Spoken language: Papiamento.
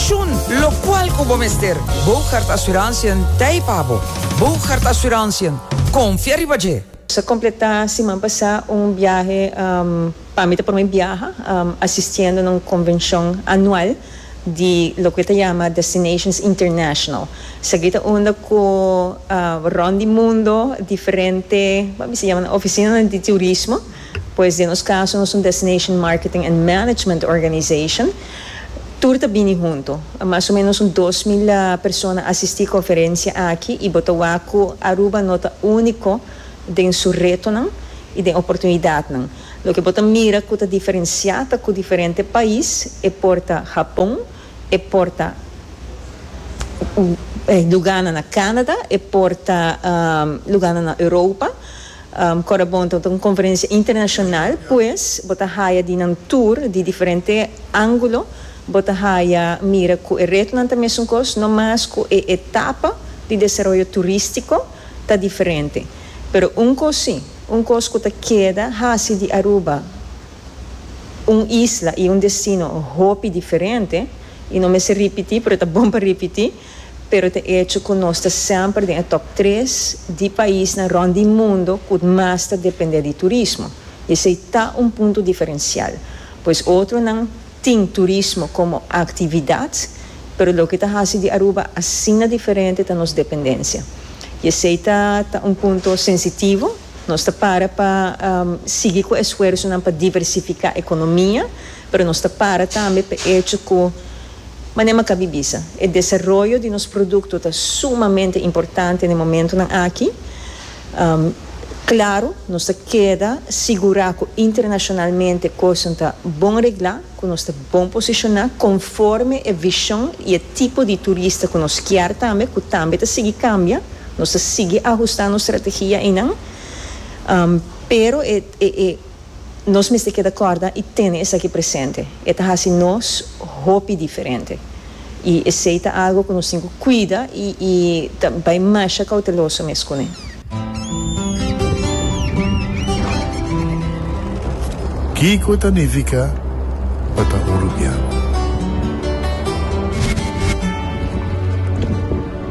Shun locual cu bo mester. Bougaard Assurantiën t'ei pa bo. Bougaard Assurantiën, confia riba dje! Sa completá siman pasá un biahe pa mi ta prome biaha asistiendo na un convencion anual di loke bo ta yama Destinations International. Esaki ta unda cu rond di mundo diferente, bo a bisa yama nan oficinanan di turismo. Pues den nos caso nos un Destination Marketing and Management Organization. Tur ta bini hunto. Mas o menos un dos mil persona asisti conferencia aki y bo ta wak cu Aruba no ta unico den su retonan y den oportunidadnan. Loke bo ta mira cu ta diferencia ta cu diferente pais e por ta Japon, e por ta lugarnan na Canada, e por ta lugarnan na Europa. Corabon ta un conferencia internacional pues bo ta haya di nan tur di diferente angulo, bo ta haya mira cu e retonan ta mesun cos, no mas cu e etapa di desaroyo turistico ta diferente. Pero un cos si, un cos cu ta keda haci di Aruba un isla y un destino hopi diferente y no mester ripiti pero ta bon pa ripiti, pero ta echo cu nos ta semper den e top tres di paisnan rond di mundo cu mas ta depende di turismo. I esey ta un punto diferencial, pues otronan tin turismo como actividad, pero loke ta haci di Aruba asina diferente ta nos dependencia. I esey ta ta un punto sensitivo. Nos ta para pa sigui cu esfuersonan pa diversifica economia, pero nos ta para tambe p'e echo cu, Mane Maccabi bisa, e desaroyo di nos produkto ta sumamente importante na e momentunan aki. Klaru, nos ta keda sigurá ku internashonalmente kosnan ta bon reglá, ku nos ta bon posishoná konforme e vishon i e tipo di turista ku nos kier tambe, ku tambe ta sigui kambia. Nos ta sigui ahustá nos strategia einan, pero e. Nos mester keda kòrda i tene esaki presente, e ta hasi nos hopi diferente. I esei ta algu ku nos tin ku kuida i ta bai masha kouteloso mes kuné. Kiko ta nifiká pa ta un rubian?